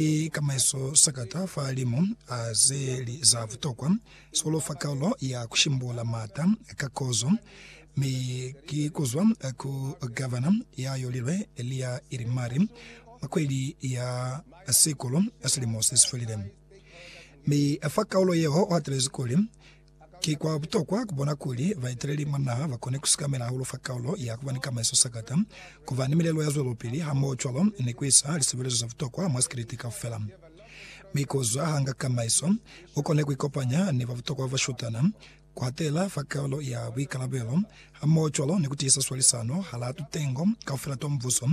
Ki kamaiso sakata fa limu a ze li za butokwa, sikolo fa kaulo ya ku shimbula maata ka kozo, mi ki kuzwa ku Gavana ya yolilwe Elia Irimari mwa kweli ya Sikulu ya silimo se si felile. Mi fa kaulo yeo u hatelezi kuli, Ki kwa butokwa ku bona kuli baeteleli mwa naha ba kone ku sikamela hahulu fa kaulo ya ku ba ni kamaiso sakata, ku ba ni milelo ya zwelopili hamohocwalo ni ku isa lisebelezo za butokwa mwa sikiliti kaufela. Mi ku zwa ha nga kamaiso, u kone ku ikopanya ni ba butokwa ba bashutana, ku hatela fa kaulo ya buikalabelo, hamohocwalo ni ku tiisa swalisano hala tutengo kaufela twa mubuso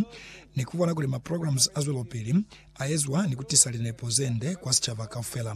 ni ku bona kuli maprograms a zwelopili a ezwa ni ku tisa linepo ze nde kwa sicaba kaufela.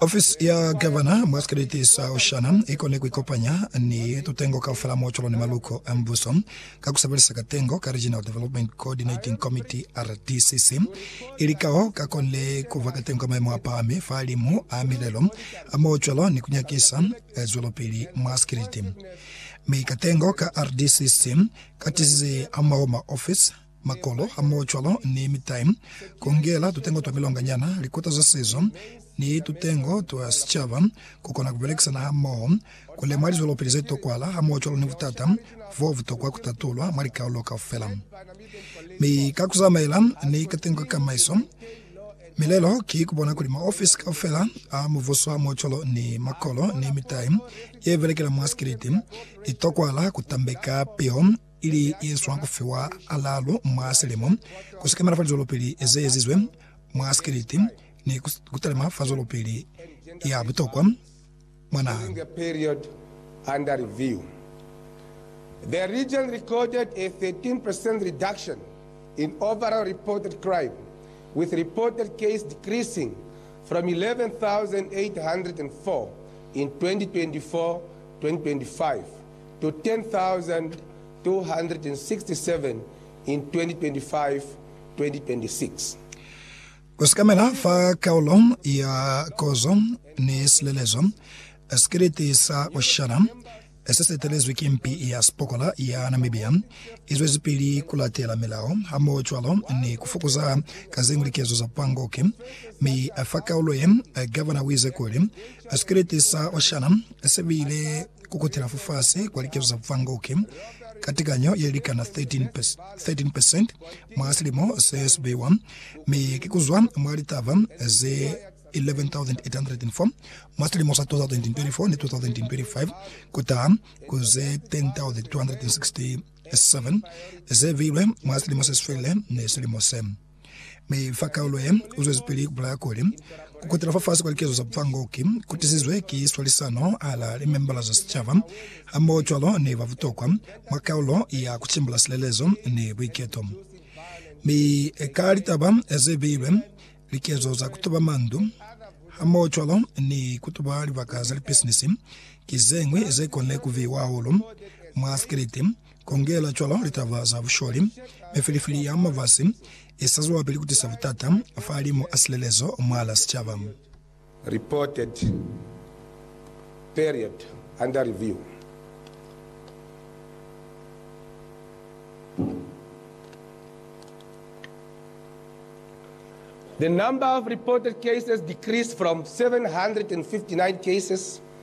Ofisi ya Gavana mwa sikeleti sa Oshana i kone ku ikopanya ni tutengo kaufela mwa cwalo ni maluko a mbuso ka ku sebelisa katengo ka Regional Development Coordinating Committee, RDCC, ili kao ka konile ku fa katengo ka maemo a pahami fa limu a milelo a mwa cwalo ni ku nyakisa zwelopili mwa sikeleti. Mi katengo ka RDCC ka tizize hamulaho maofisi makolo hamohocwalo ni mitai, kungela tutengo twa milonganyana, likota za sezo, ni tutengo twa sicaba, kukona kubelekisana hamoho, kulemwa lizwelopili zetokwala hamohocwalo ni butata bobutokwa kutatulwa mwa likaulo kaufela. Mi ka kuzamaela ni katengo ka kamaiso, milelo ki kubona kuli maofisi kaufela a mubuso hamohocwalo ni makolo ni mitai yebelekela mwa sikiliti itokwala kutambeka piho ili yezwa kufiwa alalu mwa selemo, kusekamela fa lizwelopeli zeezizwe mwa sikiliti, ni kutalima fa zwelopeli ya butokwa mwa naha. to 10,267 in 2025-2026. Ku sekamela fa kaulo ya kozo ni silelezo, sikiliti sa bushana se si etelezwi ki mpi ya sipokola ya Namibia i zwezipili ku latela milao hamohocwalo ni ku fokoza ka zeñwi likezo za pangoki. Mi fa kaulo ye, Gavana u ize kuli, Sikiliti sa bushana se bile ku kutela fafasi kwa likezo za bufangoki ka tekanyo ye likana 13 percent mwa silimo se si beiwa, mi ki ku zwa mwa litaba ze 11,804 mwa silimo sa 2024 ni 2025 ku taha ku ze 10,267 ze beilwe mwa silimo se si felile ni silimo se. Mi fa kaulo ye, uzwezipili kubulaya kuli, Kukutela fafasi kwa likezo za bufango ki kutisizwe ki swalisano hala limembala za sicaba, hamohocwalo ni ba butokwa mwa kaulo ya kucimbula silelezo ni buiketo. Mi ka litaba ze beilwe, likezo za kutuba mandu, hamohocwalo ni kutuba libaka za lipisinisi, ki zeñwi zekone kuviwa hahulu mwa sikiliti, Kongela cwalo litaba za busholi, mifilifili ya mafasi i sa zwelapili ku tisa butata fahalimu a silelezo mwalaa sicaba. Reported Period Under Review The number of reported cases decreased from 759 cases